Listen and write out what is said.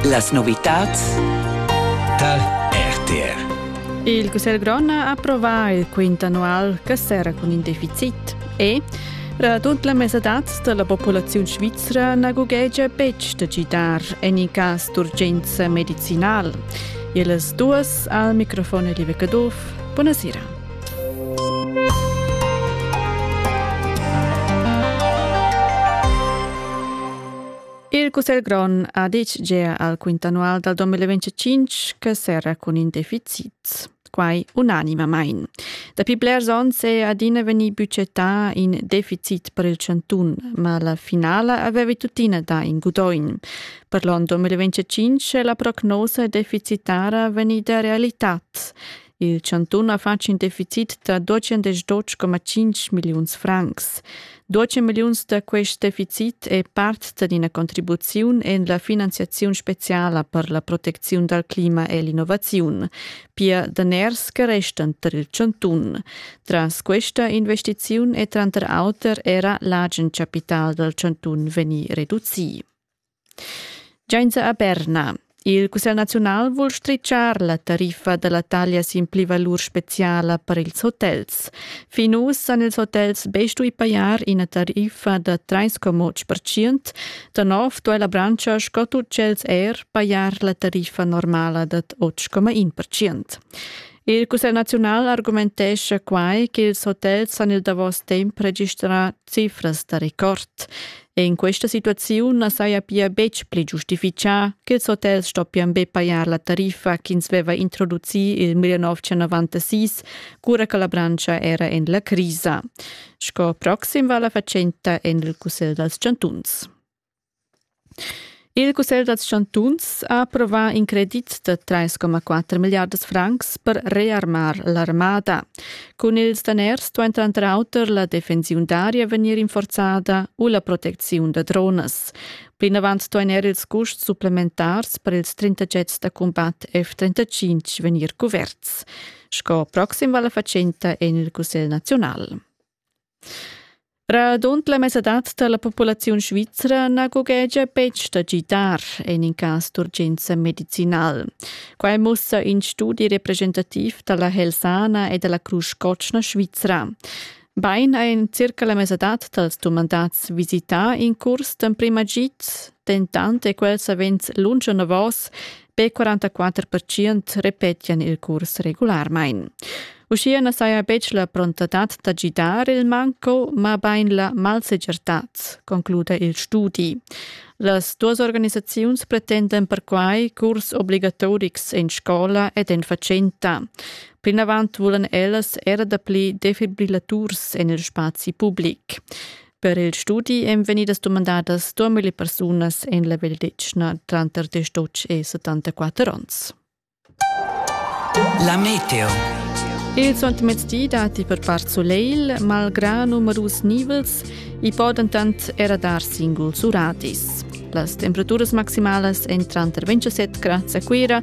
Las novitads da RTR. Il Cussegl grond ha approvà il quint annual che serra cun in deficit e Radund la mesadad da la populaziun svizra na gughegia betg da gidar en in cas d'urgenza medicinal. Illes duas al microfon Live Caduff. Buonasera. Il Cussegl grond ha ditg gia al quint annual dal 2025 che serra cun in deficit. Quai unanimamain. Dapi blers onns è adina vegnì budgetà in deficit per il chantun, ma la finala aveva tuttina dà in gudoin. Per l'anno 2025 è la prognosa deficitara vegnida realitad. Il chantun ha fatg in deficit da 212,5 milliuns francs. 12 milliuns da quest deficit è part d'ina contribuziun en la finanziaziun speciala per la protecziun dal clima e l'innovaziun. Pia daners che restan tar il chantun. Tras questa investiziun è tranter auter era l'agen chapital dal chantun vegnì reducì. Giainza a Berna. Il Cussegl naziunal vul stritschar la tariffa da la taglia sin plivalur speziala per ils hotels. Fin uss han ils hotels be stui pajar ina tariffa da 3,8%. Da nov duai la branscha sco tut tschels er pajar la tariffa normala dad 8,1%. Il Cussegl naziunal argumentescha quai ch'ils hotels han il davos temp registrà Cifras da record. En questa situaziun na saja pia betg pli giustifichà ch'ils hotels stoppian be pajar la tariffa ch'ins veva introducì il 1996, cura che la branscha era en la crisa. Sco proxim va la fatschenta en il Cussegl dals chantuns. Il cussegl dals chantuns ha approvà in credit da 3,4 milliardas francs per rearmar l'armada. Cun ils daners duain tranter auter la defensiun d'aria vegnir rinforzada u la protecziun da dronas. Plinavant duain er ils custs supplementars per ils 30 jets da cumbat F-35 vegnir cuverts. Sco proxim vala fatschenta en il Cussegl naziunal. Radund la mesadad da la populaziun svizra na gughegia betg da gidar en in cas d'urgenza medicinal. Quai mussa in studi representativ da la Helsana e da la Crusch Cotschna Svizra. Bain ha en circa la mesadad dals dumandats visità in curs d'emprima gid Dentant è quel savens lunsch enavos, be 44 repetian il curs regularmain. Uschia na saja betg la prontadad da gidar il manco, mabain la malsegirtad, concluda il studi. Las duas organisaziuns pretendan perquai curs obligatorics en scola ed en fatschenta. Plinavant vulan ellas era dapli defibrillaturs en il spazi public. Per il studi èn vegnidas dumandadas 2000 persunas en la vegliadetgna tranter 18 e 74 onns. La meteo. Il suentermezdi datti per part soleil, malgrà numerus nivels, i po dentant era dar singuls uradis. Las temperaturas maximalas èn tranter 27 grads a Cuira